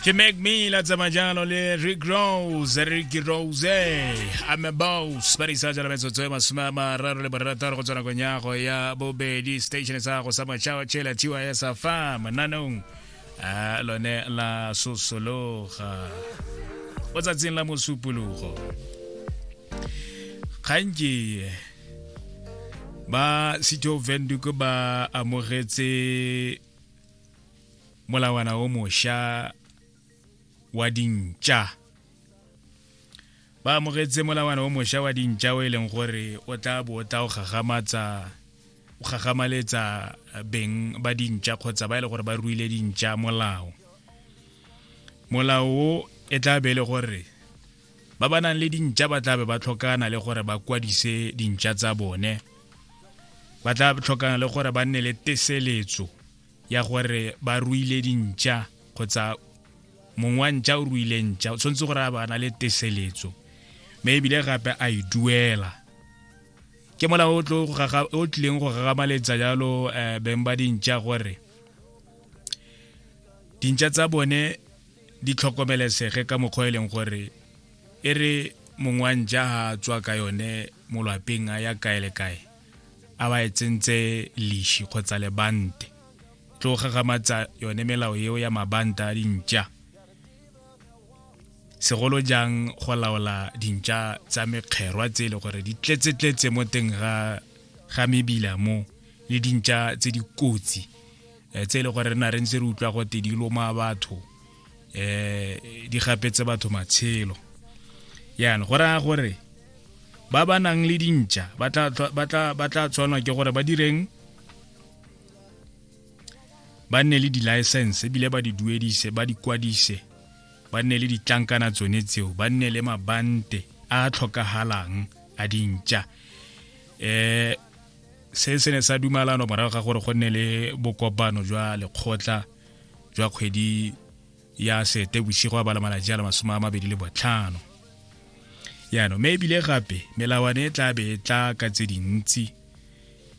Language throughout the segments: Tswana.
ke make me la tsamaya jalo le rick rose ricky rose ame bos ba di sa jala metsotso e masome a mararo le borataro go tswa nakong ya go ya bobedi station sa go sa matšhao tšhela tiwa ya sa fa mananong a lone la sosologa o tsatsing la mosupologo gantsi ba sitho venduko ba amogetse molawana o mošwa wa dintša ba amogetse molawana o mošwa wa dintša o e leng gore o tla bo o tla o gagamatsa o gagamaletsa beng ba dintša kgotsa ba e le gore ba ruile dintša molao molao o e tla be e le gore ba ba nang le dintša ba tla be ba tlhokana le gore ba kwadise dintša tsa bone ba tla tlhokana le gore ba nne le teseletso ya gore ba ruile dintšha kgotsa mongwe wa ntšha o ruile ntšha o tshwanetse gore a bana le teseletso mme ebile gape a e duela ke mola o tlileng go gagamaletsa jalo um beng ba dintšha gore dintšha tsa bone di tlhokomelesege ka mokgwa e leng gore e re mongwe wa ntšha ga a tswa ka yone molwapeng a ya kae le kae a ba e tsentse leshi kgotsa lebante tlo gagamatsa yone melao eo ya mabanta a dintša segolo jang go laola dintša tsa mekgerwa tse e le gore di tletsetletse mo teng ga ga mebila mo le dintša tse dikotsi eh, tse e le gore re na re ntse re utlwa gote di loma batho eh di gapetse batho matshelo yana go raya gore ba ba nang le dintša ba tla tshwanwa ke gore ba direng ba nne le di-license ebile ba di duedise ba di kwadise ba nne le ditlankana tsone tseo ba nne le mabante a a tlhokagalang a dintša um se se ne sa dumalano morago ga gore go nne le bokopano jwa lekgotla jwa kgwedi ya sete bosigo a bala malatsi a le masome a mabedi le botlhano yaanong me ebile gape melawane e tla be e tla ka tse dintsi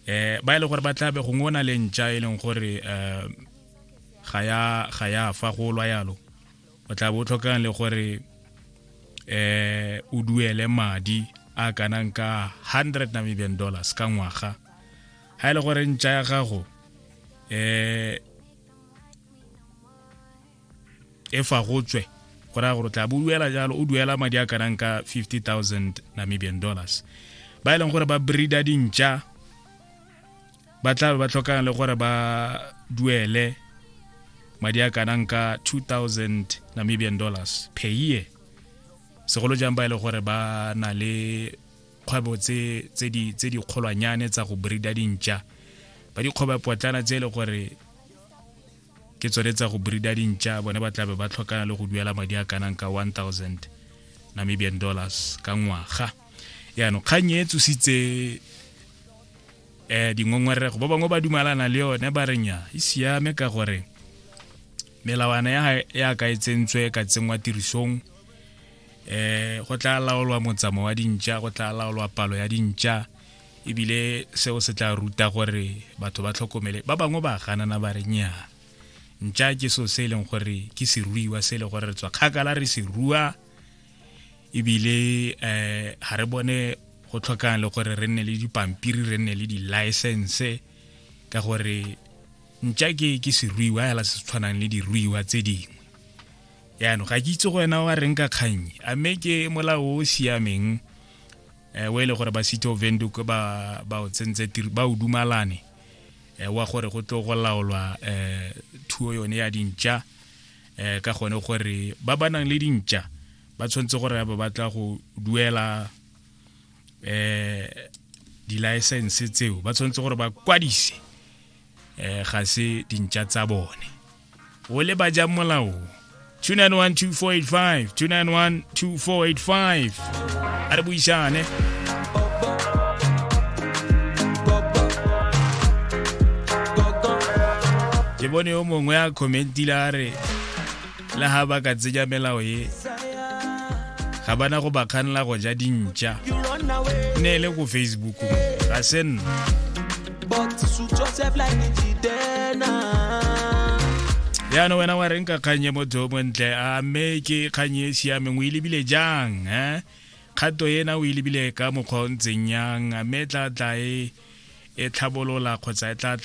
um ba e le gore ba tla be gongwe o na le ntša e leng gore um ga ya fa go lwa yalo o tla bo o tlhokang le gore um o duele madi a kanang ka hundred namibian dollars ka ngwaga ga e le gore ntša ya gago um e fa go tswe go raya gore o tla bo duela jalo o duela madi a kanang ka 50000 namibian dollars ba e leng gore ba breeda dintša ba tla be ba tlhokang le gore ba duele madi a kanang ka 2000 namibian dollars per year segolo jang ba e le gore ba na le kgwebo tse di kgolwanyane tsa go breeda dintša ba dikgwebo potlana tse e le gore ke tsone tsa go breeda dintša bone ba tlabe ba tlhokana le go duela madi a kanang ka 1000 namibian dollars ka ngwaga yaanong kgang e tsositse um dingongorego ba bangwe ba dumalana le yone ba re nya e siame ka gore melawana ya ka e tsentswe ka tsenngwa tirisong eh go tla laolwa motsamo wa dintša go tla laolwa palo ya dintša ebile seo se tla ruta gore batho ba tlhokomele ba bangwe ba ganana ba re nyaa ntša ke so se e leng gore ke seruiwa se e leng gore re tswa kgakala re se rua ebile um ga re bone go tlhokang le gore re nne le dipampiri re nne le di-license ka gore ntša ke ke seruiwa fela se se tshwanang le diruiwa tse dingwe yaanong ga ke itse go wena wa reng ka kgang a mme ke molao o o siameng um o e le gore ba city of venduk ba ba o tsentse tiro ba o dumalane um wa gore go tlo go laolwa um thuo yone ya dintša um ka gone gore ba ba nang le dintša ba tshwanetse gore ba batla go duela um di-license tseo ba tshwanetse gore ba kwadise um ga se dintša tsa bone o le ba jang molao 2912485 2912485 a re buisane ke bone yo mongwe a commentile a re le ga ba ka tsenya melao e ga bana go ba kganela go ja dintša ne e le ko facebook ga se nna yaanong wena wa reng ka kgang e motho o montle a mme ke kgang e siameng o e lebile jang um kgato ena o e lebile ka mokgwa o ntseng yang mme e tla tla e tlhabolola kgotsa e tla